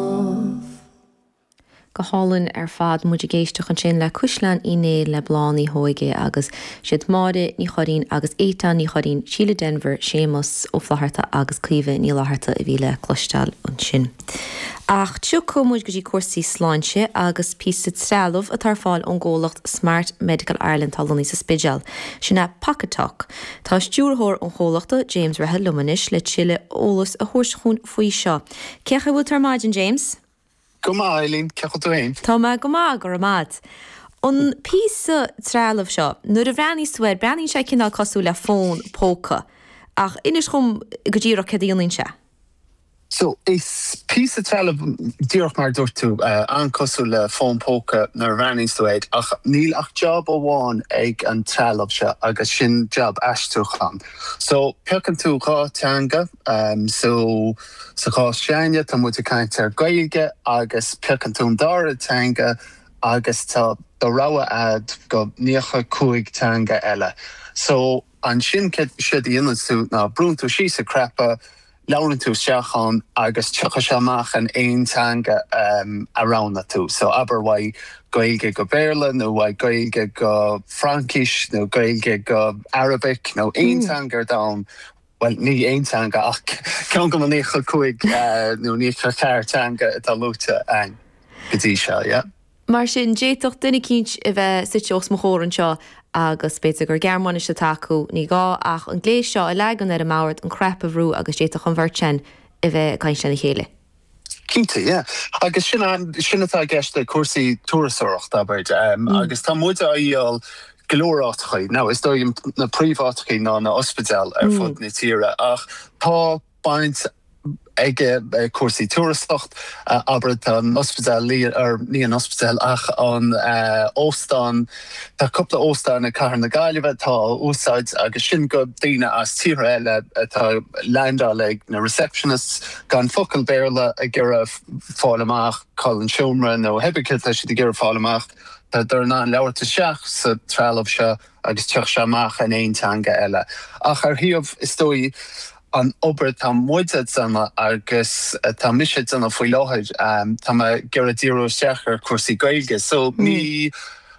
dubh. Go hálainn ar fad. Muid ag éisteacht ansin le Caisleán Uí Néill le Bláth na hÓige agus is iad Máire Ní Churraoin agus Étáin Ní Churraoin, Síle Denvir, Séamus Ó Flatharta agus Caoimhe Ní Fhlatharta a bhí le cloisteáil ansin. Ach tiocfaidh muid go dtí cúrsaí sláinte agus píosa trealamh atá ar fáil ón gcomhlacht Smart Medical Ireland atá lonnaithe sa Spidéal. Sin é Pocket Talk. Tá stiúrthóir an chomhlachta, James Rehill liom anois le tuilleadh eolas a thabhairt chugainn faoi seo. Cén chaoi a bhfuil tú ar maidin, James? Go maith, Eibhlín. Cén chaoi a bhfuil tú féin? Tá mé go maith, go raibh maith a'd. An píosa trealaimh seo, nuair a bhreathnaíos tú air, breathnaíonn sé cineál cosúil le fón póca. Ach inis dhom go díreach céard a dhéanann sé. So, is píosa trealaimh, díreach mar a dúirt tú, an-cosúil le fón póca nuair a bhreathnaíos tú air, ach níl ach jab amháin ag an trealamh seo agus sin jab aistriúchán. So, piocann tú dhá teanga, so, sa chás s'againne tá muid ag caint ar Gaeilge agus piocann tú an dara teanga agus tá do rogha a'd de naocha cúig teanga eile. So, ansin céard, séard a dhéananns tú ná brúnn tú síos an cnaipe, Labhrann tú isteach ann agus tiocfaidh sé amach in aon teanga a roghnaigh tú. So, abair uaidh Gaeilge go Béarla nó uaidh Gaeilge go Fraincis nó Gaeilge go Arabic nó aon teanga ar domhan, bhuel, ní aon teanga ach ceann de na naocha cúig nó naocha ceathair teanga atá luaite againn go dtí seo, yeah? Mar sin, d'fhéadfadh duine eicínt a bheith suite os mo chomhair anseo agus b'fhéidir gur Gearmáinis atá acu, ní gá ach an gléas seo a leagan ar an mbord, an cnaipe a bhrú agus d'fhéadfadh an bheirt sin a bheith ag caint lena chéile. Cinnte, yeah. Agus sin, sin atá i gceist le cúrsaí turasóireachta, abair, agus tá muid á dhíol go leor áiteachaí, now is dóigh liom na príomh-áiteachaí ná na hospidéil ar fud na tíre ach tá, baint aige i gcúrsaí turasóireacht, abair tá an ospidéal lí, or ní an ospidéal ach an óstán, tá cúpla óstán i gCathair na Gaillimhe atá á úsáid agus sin do daoine as tíortha eile atá ag leaindeáil ag na receptionists gan focal Béarla ag iarraidh fáil amach cá bhfuil an seomra nó pé ar bith céard atá siad ag iarraidh fáil amach, tádar in ann labhairt isteach sa trealamh seo agus tiocfaidh sé amach in aon teanga eile. Ach an príomh is dóigh an obair atá muid a' déanamh agus atá mise a' déanamh faoi láthair, tá mé ag iarraidh díriú isteach ar cúrsaí Gaeilge so mí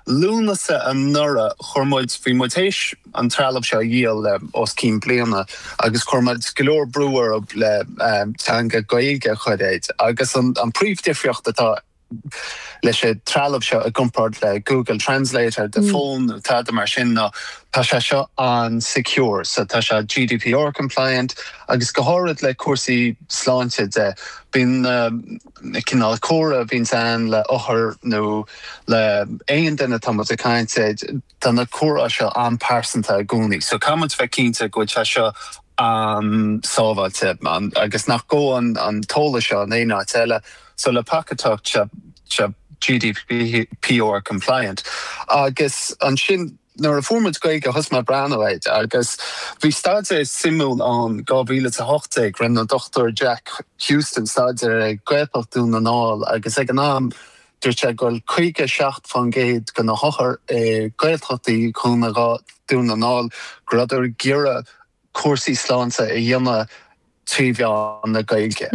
Lúnasa anuraidh chuir muid, bhí muid théis an trealamh seo a dhíol le os cionn bliana agus chuir muid go leor brú orthub le teanga Gaeilge a chur air agus an príomhdhifríocht atá i leis an trealamh seo i gcompáird le Google Translate ar do fón nó tada mar sin ná tá sé seo an-secure. So tá sé GDPR compliant agus go háirid le cúrsaí sláinte de, bíonn na cineál comhrá a bhíonns ann le othair nó le aon duine atá muid a caint de, tá na comhrá seo an-pearsanta i gcónaí. So caithfidh muid bheith cinnte go bhfuil sé seo an-sábháilte agus nach ngabhann an t-eolas seo in aon áit eile. So le Pocket Talk tá sé GDPR compliant agus ansin nuair a fuair muid Gaeilge thosaigh mé a breathnú air agus bhí staidéar suimiúil ann 2018 rinne an Dr Jack Houston staidéar ar Ghaeltacht Dhún na nGall agus ag an am dúirt sé go raibh 57% de na hothair i Gaeltachtaí Dhún na Dhún na nGall go rabhdar ag iarraidh cúrsaí sláinte a dhéanamh trí mheán na Gaeilge.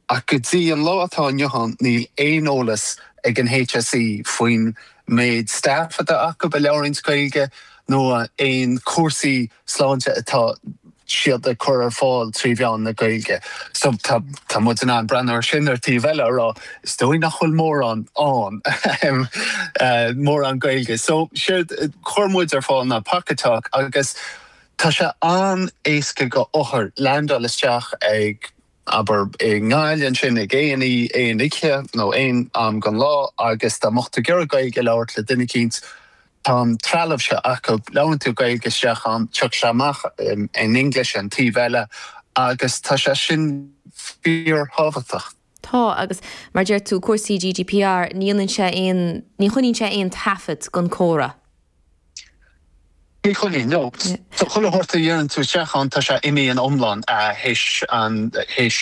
Ach go dtí an lá atá inniu ann níl aon eolas ag an HSE faoin méid staff atá acu a labhraíonns Gaeilge nó aon cúrsaí sláinte atá siad ag cur ar fáil trí mheán na Gaeilge. So tá muid in ann breathnú ar sin ar an taobh eile a rá is dóigh nach bhfuil mórán ann ahem mórán Gaeilge. So séard chuir muid ar fáil ná Pocket Talk agus Tá sé an-éasca go othar leaindeáil isteach ag, abair, i nGaillimh ansin ag aon oí, aon oíche nó aon am gon lá agus dá mbeadh tú ag iarraidh Gaeilge a labhairt le duine eicínt, tá an trealamh seo acu, labhraíonn tú Gaeilge isteach ann, tiocfaidh sé amach in English ar an taobh eile agus tá sé sin fíor-thábhachtach. Tá, agus mar a deir tú, cúrsaí GDPR, ní dhéanann sé aon, ní choinníonn sé aon taifead den comhrá. Ní choinníonn, no. So chuile shórt a deireann tú isteach ann tá sé imithe in iomlán théis an, théis,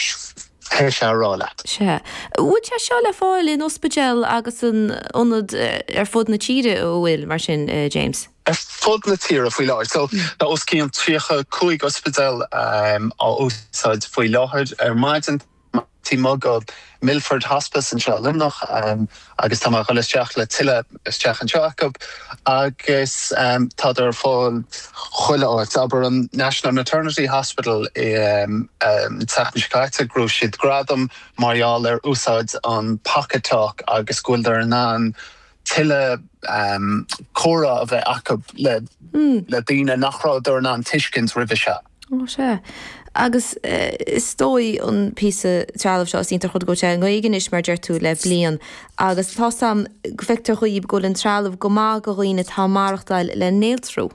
théis é a rá leat. Sea. Bhfuil sé seo le fáil in ospidéil agus in ionaid ar fud na tíre a bhfuil, mar sin, James? Ar fud na tíre faoi láthair. So tá os cionn tríocha cúig ospidéal á úsáid faoi láthair. Ar maidin. tá mé ag gabháil go Milford Hospice anseo i Luimneach agus tá mé a dhul isteach le tuilleadh isteach anseo acu agus tádar ar fáil chuile áit. Abair an National Maternity Hospital an tseachtain seo caite fuair siad gradam mar gheall ar úsáid an Pocket Talk agus go bhfuildar in ann tuilleadh comhrá a bheith acu le daoine nach rabhadar in ann tuiscint roimhe seo. Ó sea. Agus is dóigh an píosa trealaimh seo, is iontach rud go bhfuil sé i nGaeilge anois mar deir tú le bliain agus tá sé ann go bhfeictear dóibh go bhfuil an trealamh go maith do dhaoine atá ag maireachtáil le néaltrú.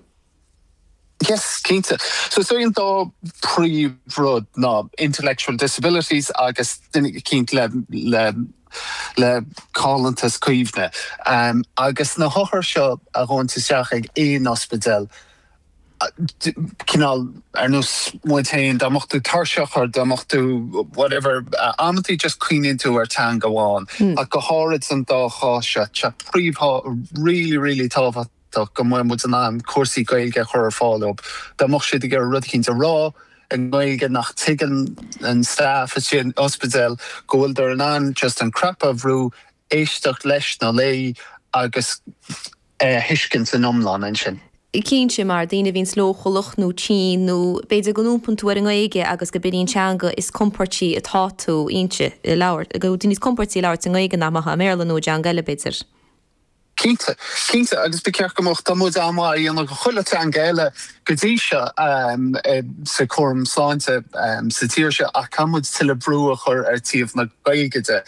Yes, cinnte. So is é an dá príomhrud ná intellectual disabilities agus daoine, cinnte, le caillteanas cuimhne. Agus na hothair seo a thagann isteach ag aon ospidéal cineál ar nós muid féin, dá mbeadh tú tuirseach or dá mbeadh tú whatever, amantaí just cuimhníonn tú ar teanga amháin ach go háirid sa dá chás seo, tá sé fíor, really, really tábhachtach go mbeadh muid in ann cúrsaí Gaeilge a chur ar fáil dóibh. Dá mbeadh siad ag iarraidh rud eicínt a rá i nGaeilge nach dtuigeann an staff istigh in ospidéal, go bhfuil siad in ann just an cnaipe a bhrú, éisteacht leis nó é a léamh agus. é a thuiscint in iomlán ansin. Cinnte, mar daoine a bhíonns leochaileach nó tinn nó b'fhéidir go n-iompaíonn tú ar an nGaeilge agus gurb in í an teanga is compordaí atá tú inti a labhairt, go bhfuil tú níos compordaí ag labhairt i nGaeilge ná mar a bheifeá i mBéarla nó i dteanga eile b'fhéidir. Cinnte, cinnte agus ba cheart go mbeadh, tá muid an-mhaith a dhéanamh do chuile teanga eile go dtí seo sa cúram sláinte sa tír seo ach caithfidh muid tuilleadh brú a chur ar taobh na Gaeilge de.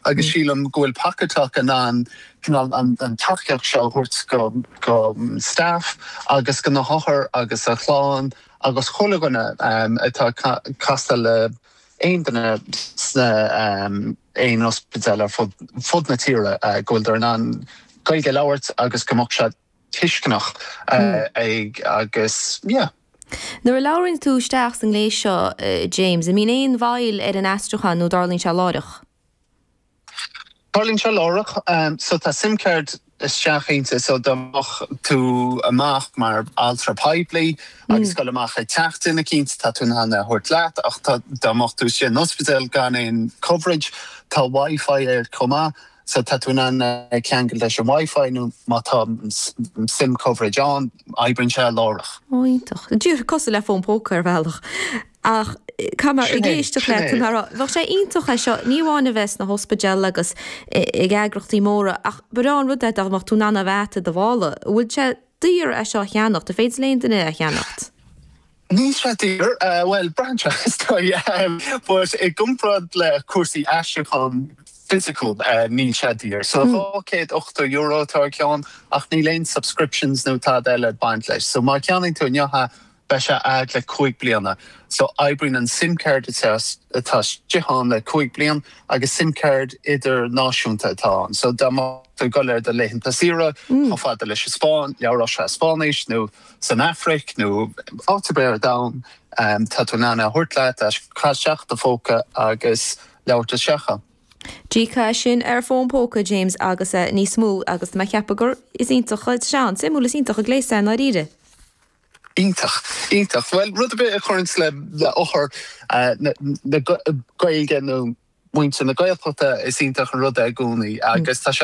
agus sílim go bhfuil Pocketalk in ann cineál an tacaíocht seo a thabhairt do staff agus do na hothair agus a chlann agus chuile dhuine atá ag casadh le aon duine sna aon ospidéal ar fud na tíre go bhfuileadar in ann Gaeilge a labhairt agus go mbeadh siad tuisceanach ag agus yeah. Nuair a labhraíonn tú isteach sa ngléas seo James, an mbíonn aon mhoill ar an aistriúchán nó dtarlaíonn sé láithreach? Tarlaíonn sé láithreach. So tá sim card istigh inti so dá mbeadh tú amach mar altra poiblí agus ag goil amach ag teach duine eicínt tá tú in ann é a thabhairt leat ach dá mbeadh tú istigh in ospidéal gan aon coverage tá wifi air chomh maith So tá tú in ann ceangal leis an Wi-Fi nó má tá sim coverage ann, oibríonn sé láithreach. Ó, iontach. Díreach cosúil le fón póca ar bhealach. Ach tá mé ag éisteacht le do chomhrá, bheadh sé iontach é seo ní amháin a bheith sna hospidéil agus ag eagrachtaí móra ach ba bhreá an rud é dá mbeadh tú in ann é a bheith i do mhála. Bhfuil sé daor é seo a cheannacht? An féidir le aon duine é a cheannacht? Níl sé daor, bhuel, braitheann sé is dóigh, but i gcomparáid le cúrsaí aistriúcháin fisiciúil níl sé daor. So dhá chéad ochtó euro atá ar cheann ach níl aon subscriptions nó tada eile ag baint leis. So má cheannaíonn tú inniu é beidh sé a'd le cúig bliana. So oibríonn an sim card atá istigh ann le cúig bliain agus sim card idirnáisiúnta atá ann. So dá mbeadh tú ag dul ar do laethanta saoire chomh fada leis an Spáinn, labhródh sé Spáinnis nó. san Afraic nó áit ar bith ar domhan, tá tú in ann é a thabhairt leat, caith isteach i do phóca agus labhairt isteach ann. Cinnte, sin ar fón póca James agus é níos mó agus tá mé ag ceapadh gur, is iontach, is sé an, suimiúil, is iontach an gléas é i ndáiríre. Iontach, iontach. Bhuel, rud ar bith a chuireanns le hobair na Gaeilge nó muintir na Gaeltachta, is iontach an rud é i gcónaí agus tá sé an,